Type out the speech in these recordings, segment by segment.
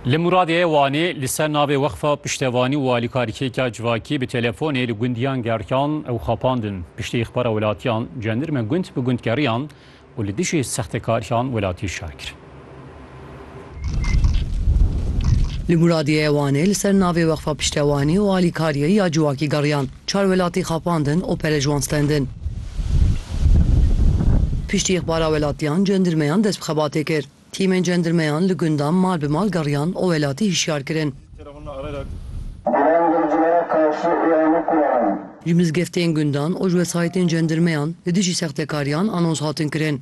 Li Muradiyê Wanê li ser navê Wexfa Piştevanî û Alîkarîkêka Civakî bi telefonê li gundiyan gerkan ew xapandin. Piştî îxbara welatiyan cendirme gund bi gund geriyan û li dijî sextekariyan welatî şer kir. Li Muradiyê Wanê li ser navê Wexfa Piştewanî û Alîkariyê ya Civakî geriyan. Çar welatî xapandin û pere ji wan stendin. Piştî ixbara welatiyan cendirmeyan dest bi xebatê kir. Tîmên cendirmeyan li gundan mal bi mal geriyan û welatî hişyar kirin. Ji mizgeftên gundan û ji wesayîtên cendirmeyan li dijî sextekariyan anons hatin kirin.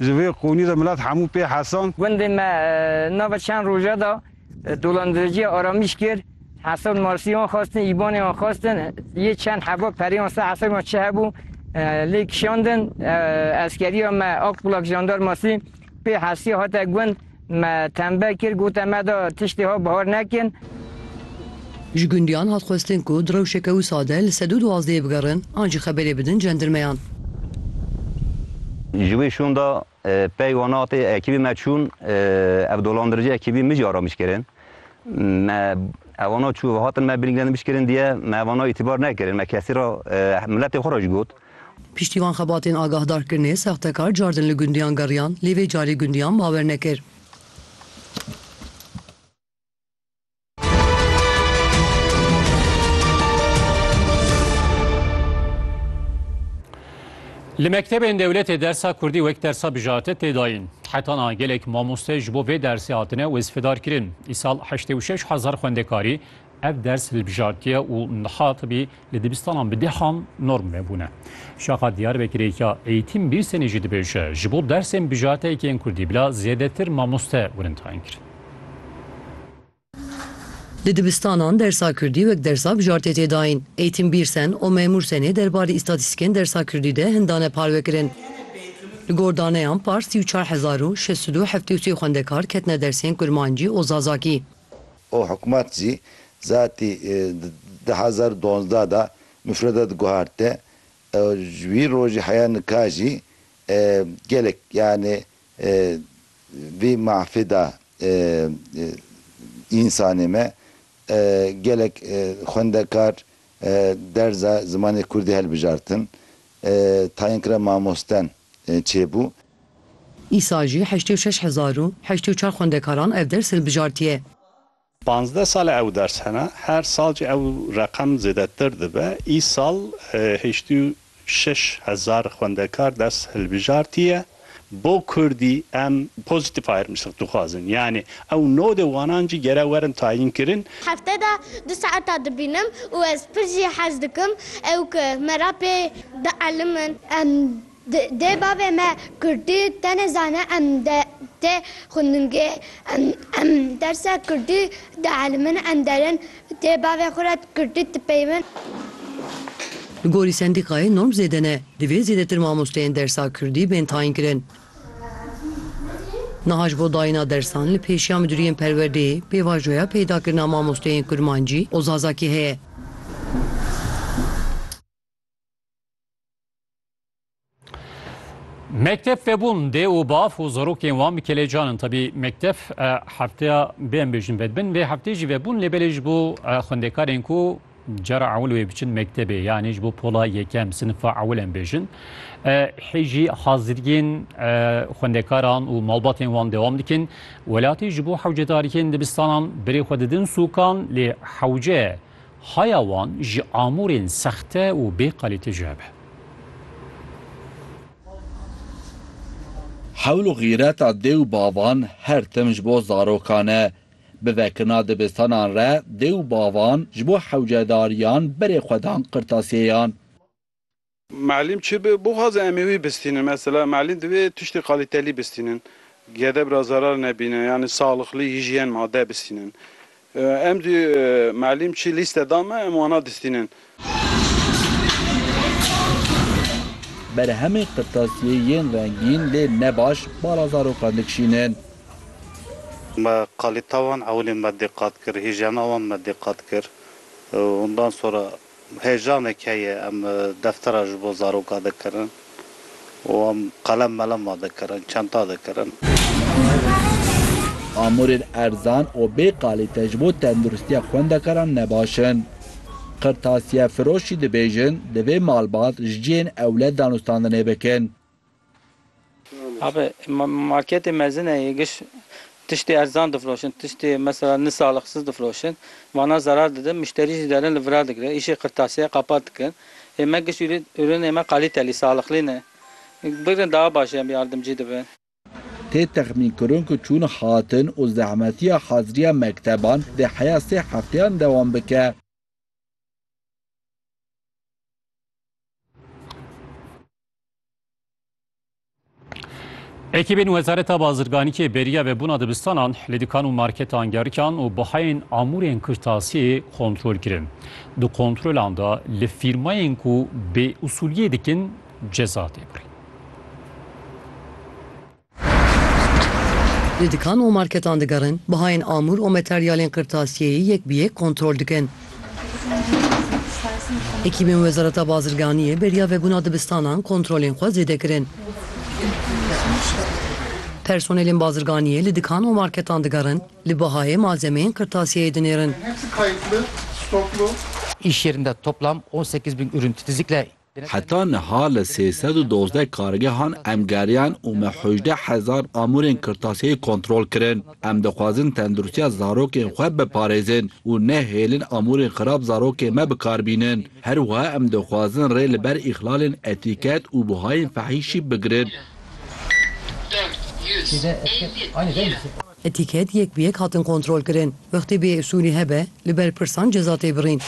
Ji vê qûnî de milet hemû pê hesand. Gundê me nava çend roja de dolandiriciya aramîş kir. Hesab Marsî wan xwestin, Îbanê wan xwestin. Yê çend heva perê wan ser hesabê wan çi hebû lê kişandin. Eskeriya me Akbulak Jandarmasî pê hesîya hate gund. Me tembe kir gote me da tiştê ha bihar nekin. Ji gundiyan hat xwestin ku di rewşeke wisa de li sedû duwazdehê bigerin an jî xeberê bidin cendirmeyan. Ji wê şûn de pey wan hatê ekîbê me çûn ev dolandirici ekîbî mijî aramiş kirin. Me ewana çû ve hatin me birîngirandin piştkirin diye me ewana îtîbar nekirin me kesî re miletê xwe re jî got. Piştî van xebatên agahdarkirinê sextekar cardin li gundiyan geriyan lê vê carê gundiyan bawer nekir. Li mektebên dewletê dersa Kurdî wek dersa bijarte tê dayîn. Heta niha gelek mamoste ji bo vê dersê hatine wezîfedarkirin. Îsal heştê û şeş hezar xwendekarî Ev ders hilbijartiye û niha tibî li dibistanan bi dehan norm nebûne. Şaxa Diyarbekirê ya Eğitim Birsenî jî dibêje, ji bo dersên bijarteyekî yên kurdî bila zêdetir mamoste gurin tayîn kirin. Li dibistanan dersa kurdî wek dersa bijartê tê dayîn. Eğitim Birsen û Memur Senê derbarê îstatîstîkên dersa kurdî de hin dane parvekirin. Li gor daneyan par sî û çar hezar û şeş sed û heftê û sê xwendekar ketine dersên kurmancî û zazakî. û hikûmet jî zatî di du hezar û duwazdeh de mufredat guhartê û ji wî rojî heya nika jî gelek yanê vî mahfê de însanê me gelek xwendekar derza zimanê kurdî hilbijartin tayînkira mamosten çêbû. Îsa jî heştê û şeş hezar û heştê û çar xwendekaran ev ders hilbijartiye. Panzdeh sal e ew ders hene, her sal jî ew reqem zêdetir dibe. Îsal heştê û şeş hezar xwendekar ders hilbijartiye. Bo kurdî em pozîtîf ayrımcılıq dixwazin. Yanî ew nodê wanan jî gere werin tayînkirin. Hefte de du saeta dibînim û ez pir jî hez dikim ew ku me re pê bielimin. Em Dê bavê me kurdî tenê zane em tê xwendingê em dersa kurdî dieelmin em derin dê bavê xwe re kurdî dipeywin. Li gorî sendîkayê norm zêde ne divê zêdetir mamosteyên dersa kurdî bên tayinkirin. Niha ji bo dayîna dersan li pêşiya miduriyên perwerdeyê pêvajoya peydakirina mamosteyên kurmancî û zazakî heye. Mekteb febûn dê û bav û zarokên wan bi kelecan in tebî mekteb hefteya bêm bêjin vedbin vê heftê jî vebûn lê belê ji bo xwendekarên ku cara ewil wê biçin mektebê yanê ji bo pola yekem sinifa ewil em bêjin hê jî haziriyên xwendekaran û malbatên wan dewam dikin welatî ji bo hewcedariyên dibistanan birê xwe didin sûkan lê hewce Haya wan ji amûrên sexte û bê kalîte jû hebe. Hewl û xîreta dê û bavan her tim ji bo zarokan e. Bi vekirina dibistanan re dê û bavan ji bo hewcedariyan berê xwe dan qirtasiyeyan. Muellim çi bi bixwaze em ê wî bistînin. Mesela muellim divê tiştê qalîtelî bistînin. Gedeb ra zerar nebîne yanî saxlixlî, hîjyen, made bistînin. Em jî muellim çi lîste da me em wana distînin. Berhemê qirtasiyê yên rengîn lê ne baş bala zarokan dikişînin. Me qalîta wan ewilê me diqat kir, hîjyena wan me diqat kir. Ondan sonra Heyecanek heye em deftera ji bo zaroka dikirin û em qelem melema dikirin, çenta dikirin. Amûrên erzan û bê kalîte ji bo tenduristiya xwendekaran ne baş in. Qirtasiyefiroş jî dibêjin divê malbat ji cihên ewle danûstandinê bikin. Abi marketê mezin e yê giş tiştê erzan difiroşin, tiştê mesela ni salixsiz difiroşin. Vana zerar didin, muşterî jî derin li vira digirin. Îşê qirtasiye qapat dikin. Ê me giş ûrînê me qalîtelî, salixlî ne. Bigirin daha baş em yardimcî dibin. Tê texmînkirin ku çûn hatin û zehmetiya haziriya mekteban dê heya sê hefteyan dewam bike. Ekîbên Wezareta Bazirganîkê beriya vebûna dibistanan li dikan û marketan gerikan û bihayên amûrên kirtasiyê kontrol kirin. Di kontrolan de li fîrmayên ku bêûsûliyê dikin ceza tê birîn. Li dikan û marketan digerin, bihayên amûr û materyalên qirtasiyeyê yek bi yek kontrol dikin. Hekîmên Wezareta Bazirganiyê beriya vebûna dibistanan kontrolên xwe zêde kirin. Personelên bazirganiyê li dikan û marketan digerin, li bihayê malzemeyên qirtasiyeyê dinêrin. Îş yerinde toplam on sekiz bin ürün titizlikle Heta niha li sê sed û dozdeh kargehan em geriyan û me hejdeh hezar amûrên kirtasiyeyê kontrol kirin. Em dixwazin tenduristiya zarokên xwe biparêzin û nehêlin amûrên xirab zarokên me bi kar bînin. Her wiha em dixwazin rê li ber îxlalên etîket û buhayên fehîşî bigirin. Etîket yek bi yek hatin kontrolkirin. Wextê bêusûlî hebe, li berpirsan ceza tê birîn.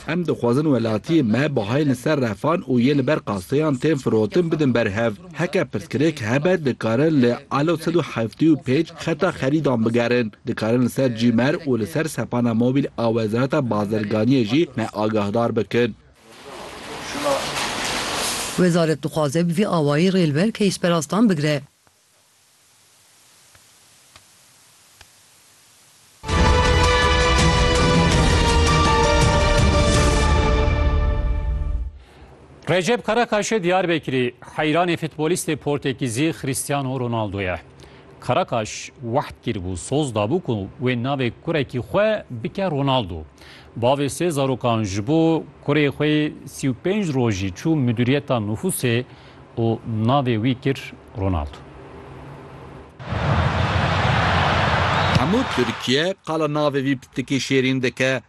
Em dixwazin welatiyên me bahayên li ser refan û yên li ber qaseyan tên firotin bidin ber hev. Heke pirsgirêk hebe dikarin li alo sed û heftê û pênc xeta xerîdan bigerin. Dikarin li ser Gmail û li ser sepana mobîl a Wezareta Bazirganiyê jî me agahdar bikin. Wezaret dixwaze bi vî awayî rê li ber keysperastan bigire. Recep Karakaşê Diyarbekirî heyranê futbolîstê Portekîzî Cristiano Ronaldo ye. Karakaş wehd kiribû, soz dabû ku wê navê kurekî xwe bike Ronaldo. Bavê sê zarokan ji bo kurê xwe yê sî û pênc rojî çû Midûriyeta Nufûsê û navê wî kir Ronaldo. Hemû Tirkiye qala navê vî pitikî şêrîn dike.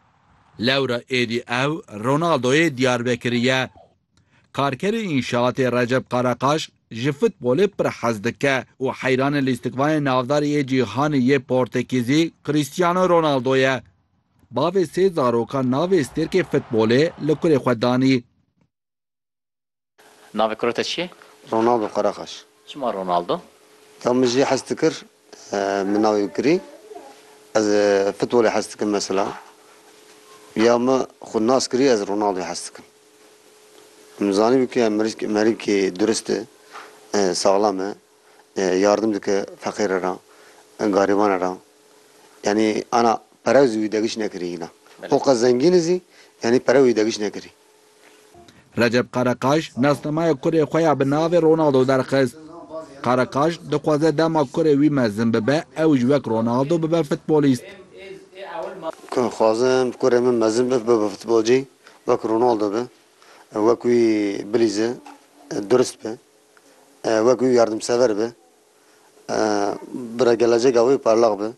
Lewra êdî ew Ronaldoyê Diyarbekirî ye. Karkerê înşaatê Recep Karakaş ji futbolê pir hez dike û heyranê lîstikvanê navdarî yê cîhanê yê Portekîzî Cristiano Ronaldo ye. Bavê sê zarokan navê stêrkê futbolê li kurê xwe danî. Navê kura te çi ye? Ronaldo Karakaş. Çima Ronaldo? Ya min jî hez dikir min navê bikirî. Ez futbolê hez dikim mesela. Ya min xwe nas kirî ez Ronaldoyê hez dikim. Min zanîbû ke mirîskê merîkê durist e, saxlam e, yardim dike feqîre re, garîbane re. yanî ana perew zî wî degiş nekirî hîna. Xo qe zengîn zî yanî perew wî degiş nekirî. Recep Karakaş nasnamaya kurê xwe ya bi navê Ronaldo derxist. Karakaş dixwaze dema kurê wî mezin bibe ew ji wek Ronaldo bibe futbolîst. Dixwazim kurê min mezin be bibe futbolcî wek Ronaldo be. Wek wî bilîze, durist be. Wek wî yardimsever be. Bira gelecega wê parlaq be.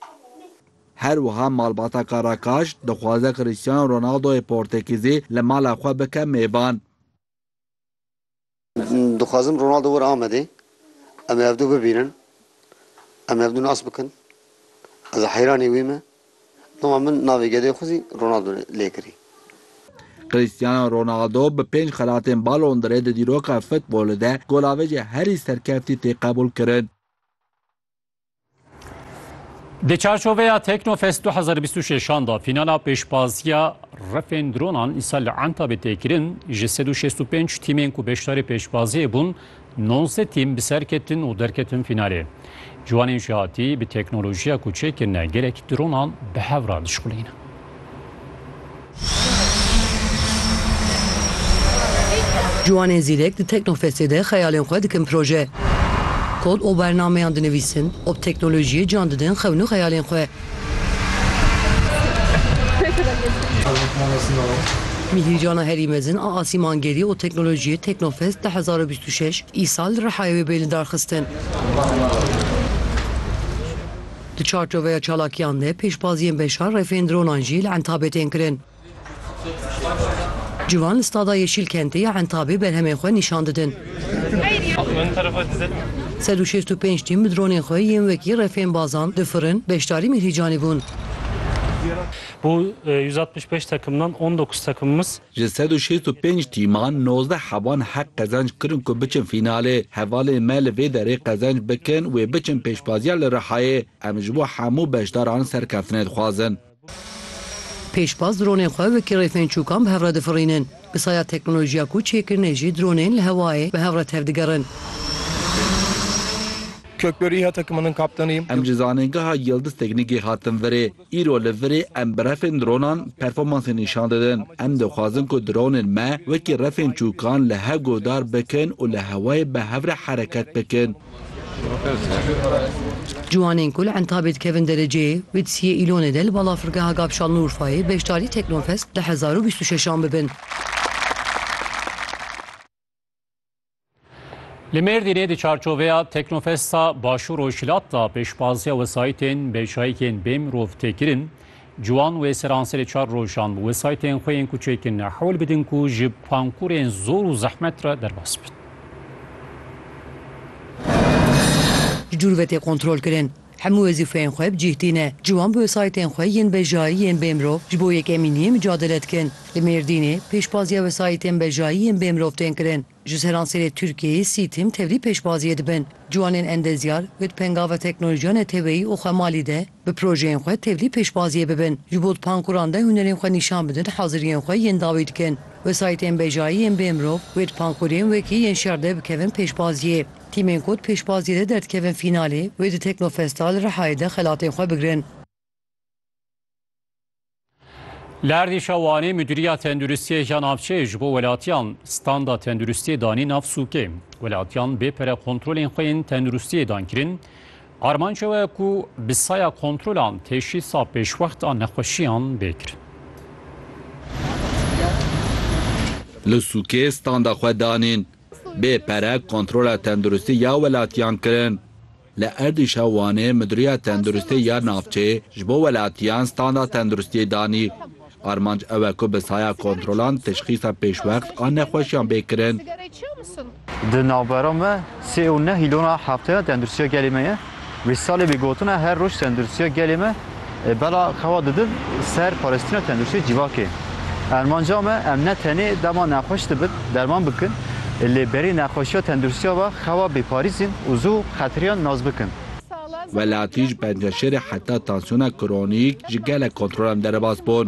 Her wiha malbata Karakaş dixwaze Cristiano Ronaldoyê Portekîzî li mala xwe bike mêvan. Dixwazim Ronaldo were Amedê, em ê ev du bibînin, em ê ev du nas bikin. Ez heyranî wî me. Doma min navê gedê xwe zî Ronaldo lê kirî. Cristiano Ronaldo bi pênc xelatên Ballon d'Orê di dîroka futbolê de golavêjê herî serkeftî tê qebûlkirin. Di çarçoveya Teknofest du hezar û bîst û şeş an de fînala pêşbaziya rifên dronan îsal li Entabê tê kirin. Ji sed û şêst û pênc tîmên ku beşdarê pêşbaziyê bûn, Nonsê tîm bi ser ketin û derketin fînalê. Ciwanên jihatî bi teknolojiya ku çêkirine gelek dronan bi hev re dişxulînin. Ciwanên zîrek di Teknofestê de xeyalên xwe dikin proje. Kod û bernameyan dinivîsin û bi teknolojiyê can didin xewn û xeyalên xwe. Mîhîrcana herî mezin a asîmangerî û teknolojiyê Teknofest du hezar û bîst û şeş îsal li Rihayê wê bê lidarxistin. Di çarçoveya çalakiyan de pêşbaziyên beşa refên dronan jî li Entabê tên kirin. Ciwan li Stada Yeşîlkentê ya Entabê berhemên xwe nîşan didin. Sed û şêst û pênc tîm bi dronên xwe yên wekî refên bazan, difirin, beşdarî Mîhrîcanê bûn. Bo yüz altmış beş takımdan on dokuz takımımız. Ji sed û şêst û pênc tîman nozdeh hevan heq qezenc kirin ku biçin fînalê. Hevalên me li vê derê qezenc bikin wê biçin pêşbaziya li Rihayê. Em ji bo hemû beşdaran serkeftine dixwazin. Pêşbaz dronên xwe wekî rêfênçûkan bi hev re difirînin. Bi saya teknolojiya ku çêkirine jî dronên li hewayê bi hev re tevdigerin. Em ji zanîngeha Yildiz Teknîkê hatin virê. Îro li virê em bi refên dronan performansê nîşan didin. Em dixwazin ku dronên me wekî refênçûkan li hev guhdar bikin û li hewayê bi hev re hereket bikin. Ciwanên ku li Entabê dikevin derecê, Witsiyê Îlonê de li balafirgeha Gabşal li Urfayê beşdarî Teknofest du hezar û bîst û şeş an bibin. Li Mêrdînê di çarçoveya Teknofesta Başûr û Şilat de pêşbaziya wesayîtên bêçayîkên bêmirov tê kirin. Ciwan wê seran serê çar rojan bi wesaytên xwe yên kuçekin hewl bidin ku ji pankurên zor û zehmet re derbas bin. Ji dûr ve tê kontrolkirin. Hemû wezîfeyên xwe bi cîh tîne. Ciwan bi wesaytên xwe yên bejayî yên bêmirov ji bo yekemîniyê micadele dikin. Li Mêrdînê pêşbaziya wesaytên bejayî yên bêmirov tên kirin. Ji ser ansêrê Tirkiyeyê sî tim tevlî pêşbaziyê dibin. Ciwanên endezyar bi pengava teknolojiya neteweyî û xwemalî de bi projeyên xwe tevlî pêşbaziyê bibin. Ji bo di pankuran de hunerên xwe nîşan bidin haziriyên xwe yên dawî dikin. Wesayîtên bejayî yên bê mirov wê di pankurên wekî yên şer de bikevin pêşbaziyê. Tîmên ku di pêşbaziyê de derdikevin fînalê wê di Teknofesta li Rihayê de xelatên xwe bigirin. Li erdîşa Wanê Mudîriya Tenduristiyê ya Navçeyê ji bo welatiyan standa tenduristiyê danî nav sûkê. Welatiyan bê pere kontrolên xwe yên tenduristiyê dan kirin. Armanca we ye ku bi saya kontrolan teşhîsa pêşwext a nexweşiyan bê kirin. Li sûkê standa xwe danîn. Bê pere kontrola tenduristî ya welatiyan kirin. Li êrîşa Wanê Midûriya Tenduristê ya navçê ji bo welatiyan standa tenduristiyê danî. Armanc ew e ku bi saya kontrolan teşxîsa pêşwext a nexweşiyan bê kirin. Di navbera me sê û neh hîlona Hefteya Tenduristiya Gelê me ye. Wî salê bi gotina Her roj Tenduristiya Gelê me Bela xewa didin ser parêstîna tenduristiyê civakê. Ermanca me em ne tenê dema nexweş dibin derman bikin lê berî nexweşiya tenduristiya ve xewa bêparîzîn û zû xetiriyan nas bikin. Welatî ji penceşêrê heta tansiyona kronîk ji gelek kontrolan derbas bûn.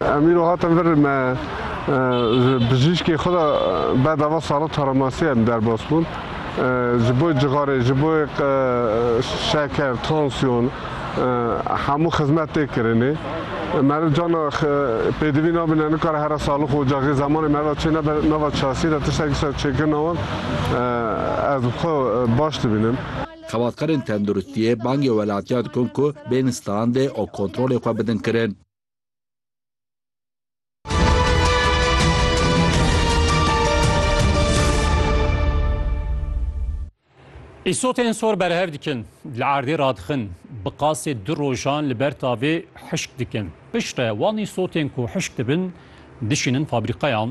Em îro hatin vir me ji bijîşkê xwe de bedava Salo Taramasiya em derbas bûn. Ji bo cixarê, ji bo şeker, tansiyon hemû xizmet tê kirinê. Meriv cana pêdivî nabîne nikare here salix û ocaxê zemanê meriva çê nebe nava çasî de tiştekî ser çêkirina wan ez xwe baş dibînim. Xebatkarên tenduristiyê bangê welatiyan dikin ku bên standê û kontrolê xwe bidin kirin. Îsotên sor berhev dikin, li erdê radixin, bi qasê du rojan li ber tavê hişk dikin. Piştre wan îsotên ku hişk dibin, dişînin fabrîqeyan,